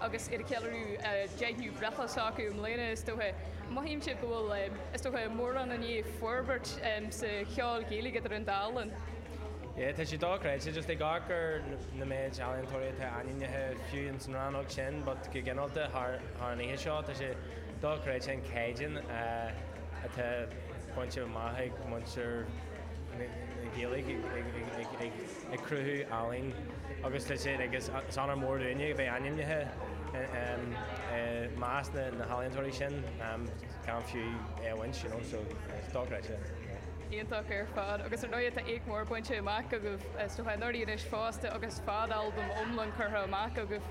agus iad ag ceiliúradh a deichiú breithlá s'acu i mbliana, is dócha. Mothaímse go bhfuil, is dócha, mórán i ndiaidh forbairt sa cheol Gaeilge idir an dá linn. Yeah, tá sé dochreidte, just ag amharc ar na méid ealaíontóirí atá ainmnithe, fiú ins an rannóg sin, but go gineálta thar an oíche seo, tá sé dochreidte an caighdeán atá bainte amach ag muintir na Gaeilge ag. ag cruthú ealaín agus tá siad ag. Is onóir mór dúinne a bheith ainmnithe i measc na n-ealaíontóirí sin, gan fiú é a bhaint, you know, so is dochreidte. Iontach ar fad agus ar ndóigh tá éacht mór bainte amach agaibhse ó anuraidh anois fosta agus fadalbam iomlán curtha amach agaibh.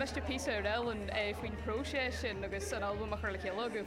Miste píosa a rá linn faoin phróiseas sin agus an albam a chur le chéile agaibh?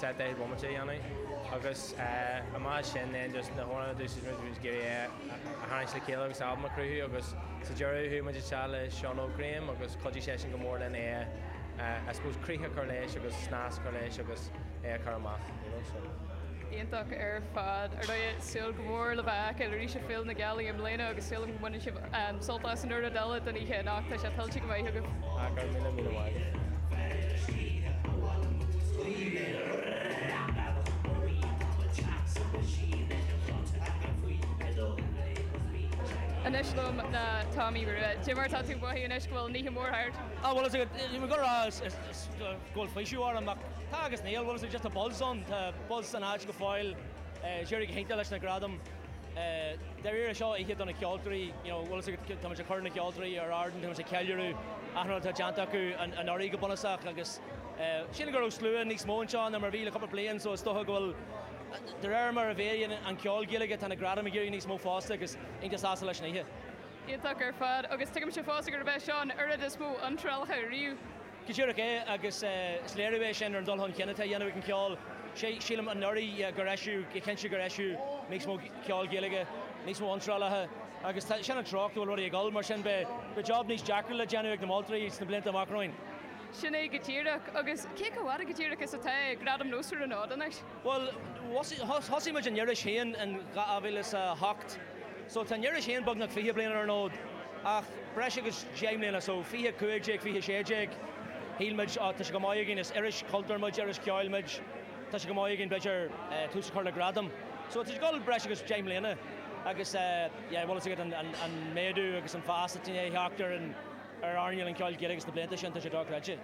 set daichead bomaite a dhéanamh agus chomh maith leis sin then just na hamhráin a d'úsáid muid muid ag iarraidh é a tharraingt le chéile agus albam a chruthú agus sa deireadh chuaigh muid isteach le Seán Óg Graham agus chuidigh seisean go mór linn é a I suppose críoch a chur leis agus snas a chur leis agus é a chur amach you know so. Iontach ar fad. Ar ndóigh, súil go mór le bhur bhfeiceáil arís ag Féile na Gealaí i mbliana agus súil agam go mbaineann sibh sult as an oiread eile den oíche anocht tá sé tuillte go maith agaibh. Go raibh míle míle maith. Anois liom ná Tomaí Rua. Cad é mar atá tú ag mothú anois go bhfuil an oíche mór thart? Ah bhuel is ag an níl go raibh is is is go bhfuil faoiseamh orm ach tá agus níl bhuel is ag just a buzz ann tá buzz san áit go fóill eh is d'éirigh go hiontach leis na gradaim. Dáiríre, seo oíche do na ceoltóirí, tá muid ag cur na ceoltóirí ar ard, tá muid ag ceiliúradh achan rud atá déanta acu anuraidh go bunúsach agus sílim go raibh slua níos mó anseo ná mar a bhí le cúpla bliain so is dócha go bhfuil, de réir mar a mhéadaíonn an ceol Gaeilge, tá na gradaim ag éirí níos mó fosta agus iontach sásta leis an oíche. Iontach ar fad agus tuigimse fosta gurb é seo an oiread is mó iontrálacha riamh. Go díreach é, agus is léiriú é sin ar an dul chun cinn atá á dhéanamh ag an cheol. Sílim anuraidh gur eisíodh, go cinnte gur eisíodh níos mó ceol Gaeilge, níos mó iontrálacha, agus sin an treocht go bhfuil rudaí ag dul, mar sin beidh job níos deacra le déanamh ag na moltoirí sna blianta amach romhainn. Sin é go díreach, agus cé chomh fada go díreach is atá Gradaim Nós ar an fhód anois? Bhuel, thosaigh muid an iris féin in 2008, so tá an iris féin beagnach fiche bliain ar an fhód, ach breis agus deich mbliana, so fiche a cúig déag, fiche a sé déag, shíl muid, á, tá sé chomh maith againn, is iris chultúir muid, iris cheoil muid, tá sé chomh maith againn, b'fhéidir, tús a chur le gradam. So tá sé ag dul breis agus deich mbliana agus, yeah, bhfuil fhios agat an méadú agus an fás atá i ndiaidh a theacht ar an, ar airneáil an cheoil Ghaelaigh sna blianta sin, tá sé dochreidte.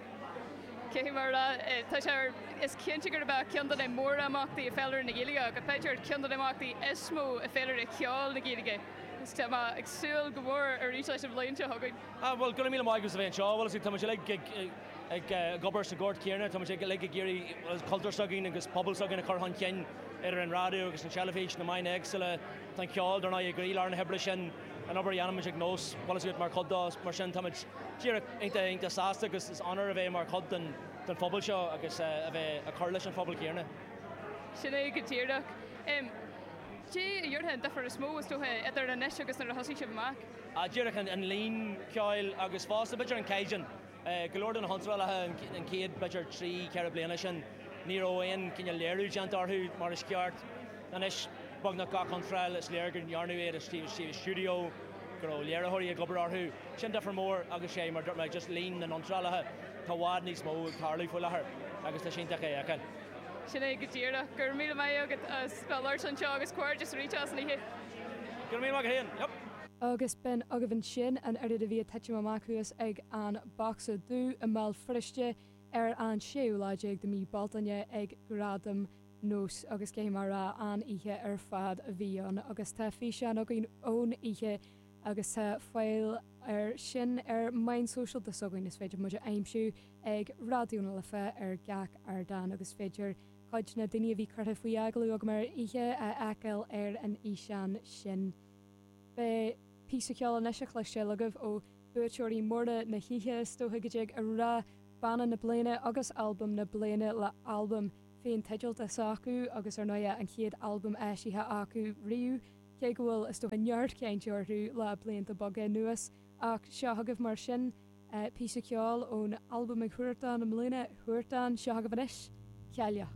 Cad é mar a déarfá, tá sé ar, is cinnte gurb é ceann de na mórimeachtaí i bhféilire na Gaeilge, agus b'fhéidir ceann de na himeachtaí is mó i bhféilire cheoil na Gaeilge, agus tá mé ag súil go mór arís leis an bhliain seo chugainn. Ah, bhuel, gura míle maith agat as a bheith anseo. Bhuel, is é, táimid uilig ag, ag, ag obair sa ghort chéanna, táimid ag, uilig ag iarraidh, bhuel, cultúr s'againn agus pobal s'againn a chur chun cinn, idir an raidió agus an teilifís, na meáin éagsúla, Tá an ceol, dar ndóigh, i gcroílár na hoibre sin, an obair a dhéanaimid ag Nós, bhuel tá a fhios agat mar chuid dó, mar sin táimid díreach iontach, iontach sásta agus is onóir a bheith mar chuid den phobal seo agus a bheith ag cur leis an phobal céanna. Sin é go díreach. Cad é a déarfá an difear is mó, is dócha, idir anois agus nuair a thosaigh sibh amach? Díreach an líon ceoil agus fosta b'fhéidir an caighdeán. Go leor de na hiontrálacha an chéad b'fhéidir trí, ceithre bliana sin, ní raibh aon cineál léiriú déanta orthu mar is ceart. Anois, beagnach gach iontráil, is léir go ndearnadh iad i suíomh stiúideo, go raibh léiritheoirí ag obair orthu. Sin difear mór agus is é, mar a dúirt mé, just líon na n-iontrálacha, tá i bhfad níos mó ag tarlú faoi láthair agus tá sé iontach é a fheiceáil. Sin é go díreach. Go raibh míle maith agat as bheith ag labhairt anseo agus comhghairdeas arís as an oíche. Go raibh míle maith agat féin. Yep. Agus b'in agaibh ansin an oiread a bhí ag titim amach thuas ag an Bosca Dubh i mBéal Feirste ar an séú lá déag de mhí Bealtaine ag Gradaim Nós agus caithfidh mé a rá an-oíche ar fad a bhí ann agus tá físeán againn ón oíche agus tá fáil air sin ar mheáin shóisialta de s'againn, is féidir muid a aimsiú ag Raidió na Life ar gach ardán agus is féidir cuid de na daoine a bhí curtha faoi agallamh agam ar an oíche a fheiceáil ar an fhíseán sin. Beidh píosa ceoil anois le cloisteáil agaibh ó bhuaiteoirí móra na hoíche, is dócha go dtig a rá, Banna na Bliana agus Albam na Bliana le albam féin-teidealta s'acu agus ar ndóighe an chéad albam eisithe acu riamh, cé go bhfuil is dócha neart cainte orthu le blianta beaga anuas. Ach seo agaibh mar sin píosa ceoil ón albam ag Huartán i mbliana, Huartán, seo agaibh anois, Cailleach.